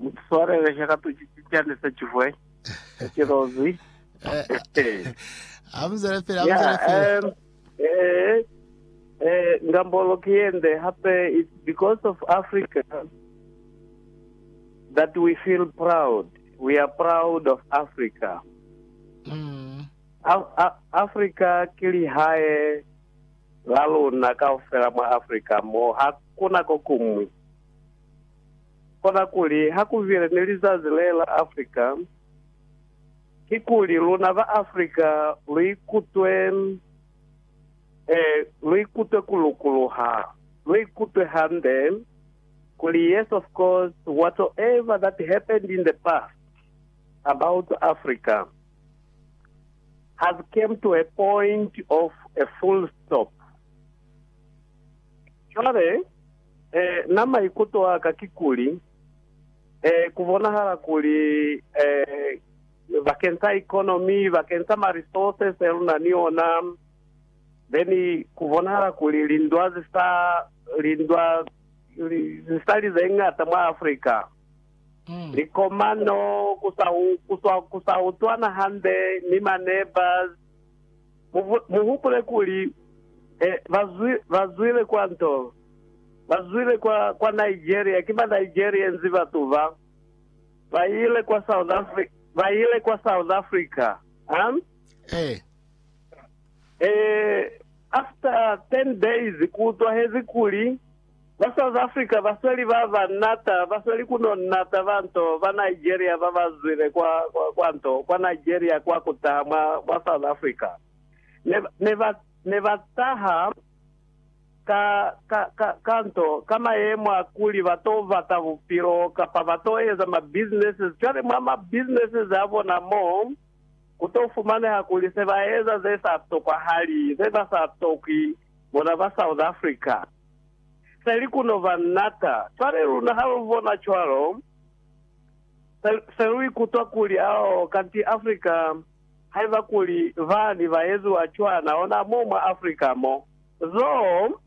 Mutuswarele he ka tuci cicani se cihwe, se cilozi. Amuzele pili, amuzele pili. Eh, eh, ngambolo ki yende hape, it's because of Africa that we feel proud. We are proud of Africa. Mm. Africa ke lihae la lona kaufela mwa Africa mo hakuna ko kumwi. Kona kuli ha ku bile ni lizazi le la Afrika, kikuli luna ba Afrika lu ikutwe, eh, lu ikutwe ku lukuluha, lu ikutwe hande, kuli yes of course whatsoever that happened in the past about Afrika has came to a point of a full stop. Cwale, Eh, na maikuto aka kikuli, eh, kubonahala kuli, eh, bakeng sa economy, bakeng sa ma resources e luna ni ona, then kubonahala kuli lindwa zi sa, lindwa zi sa li ze ngata mwa Africa. Likomano, ku sa, ku sa, ku sa utwana hande ni ma neighbors, Mu hupule kuli, ba zwi, ba zwile kwa ntolo. Ba zwile kwa, kwa Nigeria. Ki ba Nigerians batu ba. Ba ile kwa South Afri-, ba ile kwa South Africa. Huh? Eh. Eh, after ten days, ku utwahezi kuli, Ba South Africa ba sweli ba ba nata, ba sweli ku no nata ba nto ba Nigeria ba ba zwile kwa, kwa, kwa nto, kwa Nigeria kwa ku taha mwa, mwa South Africa. Ne, ne ba, ne ba taha ka, ka, ka, ka nto, ka mayemo a kuli ba to bata bupilo, kapa ba to eza ma businesses. Cwale mwa ma businesses a bona mo, ku to fumaneha kuli se ba eza ze sa tokwahali, ze ba sa tokwi. Bona ba South Africa. Selikuno ba nata. Cwale luna ha lu bona cwalo, se, se lu ikutwa kuli, ao, kanti Africa, haiba kuli bani ba eziwa cwana ona mo mwa Africa mo. Zoo,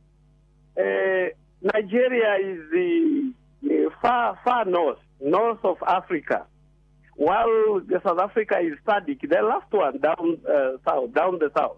eh, Nigeria is far, far north, north of Africa, while South Africa is SADC, the last one down, uh, south, down the south.